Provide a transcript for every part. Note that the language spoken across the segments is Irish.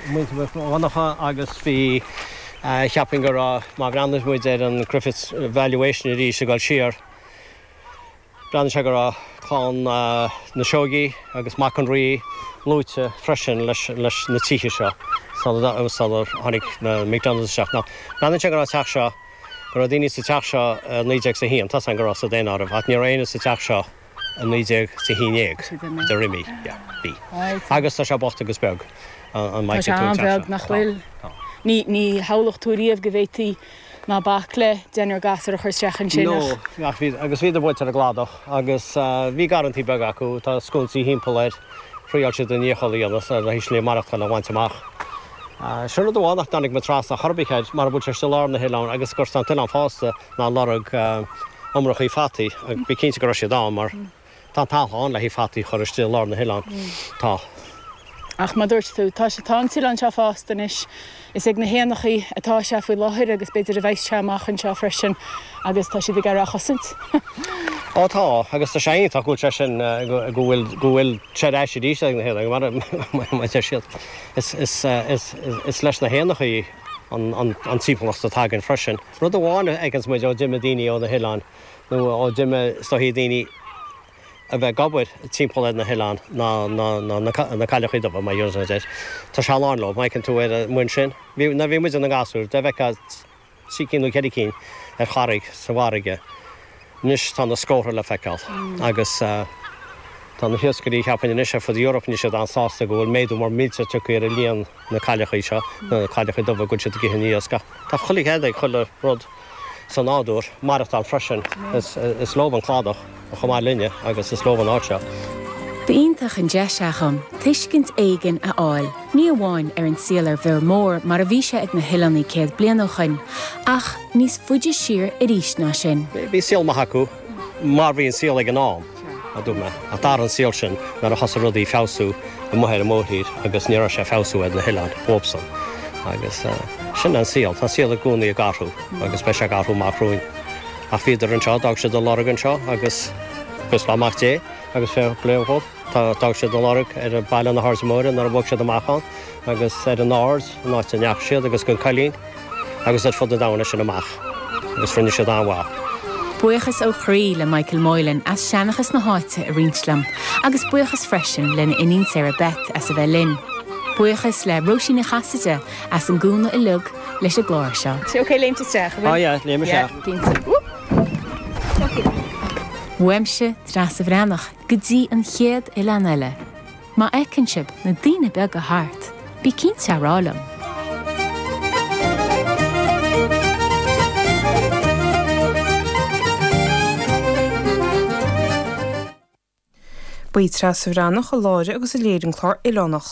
muintir Mhic Dhonnacha agus bhí, cheapfainn go raibh, má bhreathnaíos muid ar an Griffiths Valuation arís ag dul siar, breathnaíonn sé go raibh clann na Seoigí agus Mac an Rí luaite freisin leis na tithe seo sular tháinig na McDonaghs isteach. Now, breathnaíonn sé go raibh an teach seo, go raibh daoine sa teach seo i naoi déag is a haon, tá a fhios againn go raibh sa daonáireamh ach ní raibh éinne sa teach seo, i naoi déag is a haon déag bhíodar imithe, bhí. Agus tá sé bocht agus beag, an mbainfidh tú an teach seo? Tá sé an-bheag, nach bhfuil? Ní shamhlódh tú riamh go bhféadfaí ná bac le deichniúr gasúr a chur isteach ansin, ach. No, ach bhí, agus bhíodar buailte ar an gcladach agus bhí garrantaí beaga acu, tá sconsaí thimpeall air, thriáil siad a ndícheall a dhéanamh ar an slí mhaireachtáil a bhaint amach. Sin rud amháin nach dtáinig mé trasna chor ar bith air, mara bhfuil sé istigh i lár na hoileáin agus go bhfuil an t-oileán fásta, ná lorg iomrachaí fataí ach bí cinnte go raibh siad ann mar tá an talamh ann le haghaidh fataí a chur istigh i lár na hoileáin. Tá. Ach mar dúirt tú, tá sé, tá an t-oileán seo fásta anois. Is ag na héanachaí atá sé faoi láthair agus b'fhéidir a bheas sé amach anseo freisin agus tá siad ag iarraidh a chosaint. Ó tá, agus tá sé iontach go bhfuil sé sin, go bhfuil, go bhfuil sé ar ais arís ag na héanachaí mar, mar a deir siad, is, is, is, is leis na héanachaí an, an, an timpeallacht atá againn freisin. Rud amháin a fheiceanns muid ó d'imigh daoine ó na hoileáin nó ó d'imigh stop daoine a bheith ag obair timpeall ar na hoileáin ná na cailleachaí dubha, má dhéarfas mé duit. Tá sé lán leo. Má fheiceann tú ar an mbinn sin, nuair a bhí muid ina ngasúir, dá bhfeicfeá trí cinn nó ceithre cinn ar charraig sa bhfarraige. Anois tá na scórtha le feiceáil agus tá na hiascairí cheapfainn anois ar fud Europe, níl siad an-sásta go bhfuil méadú mór millteach tagtha ar líon na cailleachaí seo, na cailleachaí dubha go bhfuil siad ag ithe na n-iasc. Ach tá chuile chead ag chuile rud sa nádúr maireachtáil freisin. Is leob an cladach chomh maith linne agus is leob an áit seo. Ba iontach an deis í dhom tuiscint éigin a fháil, ní amháin ar an saol ar Bhior Mór mar a bhí sé ag na hoileánaigh céad bliain ó shoin, ach, níos faide siar arís ná sin. Bhí saol maith acu mar bhí an saol ag an am, a dúirt mé, ach d'athraigh an saol sin nuair a thosaigh rudaí ag feabhsú amuigh ar an mhórthír agus ní raibh sé ag feabhsú ar na hoileáin dhóbhsan. Agus sin é an saol. Tá an saol i gcónaí ag athrú agus beidh sé ag athrú amach romhainn. Ach bhíodar anseo, d'fhág siad a lorg anseo agus buíochas le Mac Dé agus fair play dhóibh d'fhág siad a lorg ar Baile na hAirde Móire nuair a bhog siad amach ann agus ar an Ard, an áit a ndeachaigh siad agus an Coillín. agus ar fud na domhain as sin amach agus rinne siad an-mhaith. Buíochas ó chroí le Michael Moylan as seanchas na háite a roinnt liom agus buíochas freisin lena iníon Sarah Beth as a bheith linn. Buíochas le Róisín Ní Chasaide as an gcúnamh uilig leis an gclár seo. Sé ok léimt isteach, an bhfuil? Á yeah, léim isteach. Yeah, cinnte. Uaimse, Treasa Bhreathnach, go dtí an chéad Oileán eile. Má fheiceann sibh na daoine beaga thart, bí cinnte a rá liom. Ba í Treasa Bhreathnach a láithrigh agus a léirigh an clár Oileánach.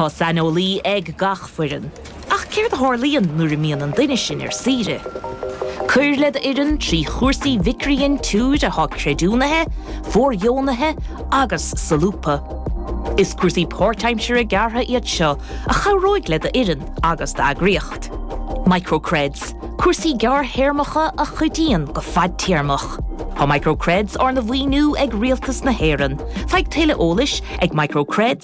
Tá saineolaí ag gach foireann. Ach céard a tharlaíonn nuair a mbíonn an duine sin ar saoire? Cuir le do fhoireann trí chúrsaí mhicridhintiúir atá creidiúnaithe, fóirdheonaithe agus solúbtha. Is cúrsaí páirtaimsire gearrtha iad seo a chabhróidh le do fhoireann agus d'eagraíocht. Micro-Creds, Cúrsaí gearrthéarmacha a chuidíonn go fadtéarmach. Tá Micro-Creds arna mhaoiniú ag Rialtas na hÉireann. Faigh tuilleadh eolais ag micro-cred.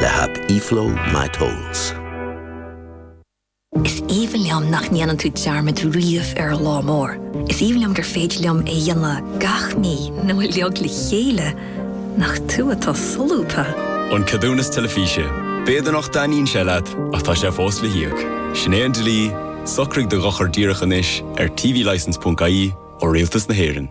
le haip eFlow My Tolls. Is aoibhinn liom nach ndéanann tú dearmad riamh ar an lá mór. Is aoibhinn liom gur féidir liom é a dhéanamh gach mí nó uilig le chéile. Nach tú atá solúbtha! An Ceadúnas Teilifíse. B'fhéidir nach dtaitníonn sé leat, ach tá sé fós le híoc. Sin é an dlí, socraigh do dhochar díreach anois ar tvlicense.ie ó Rialtas na hÉireann.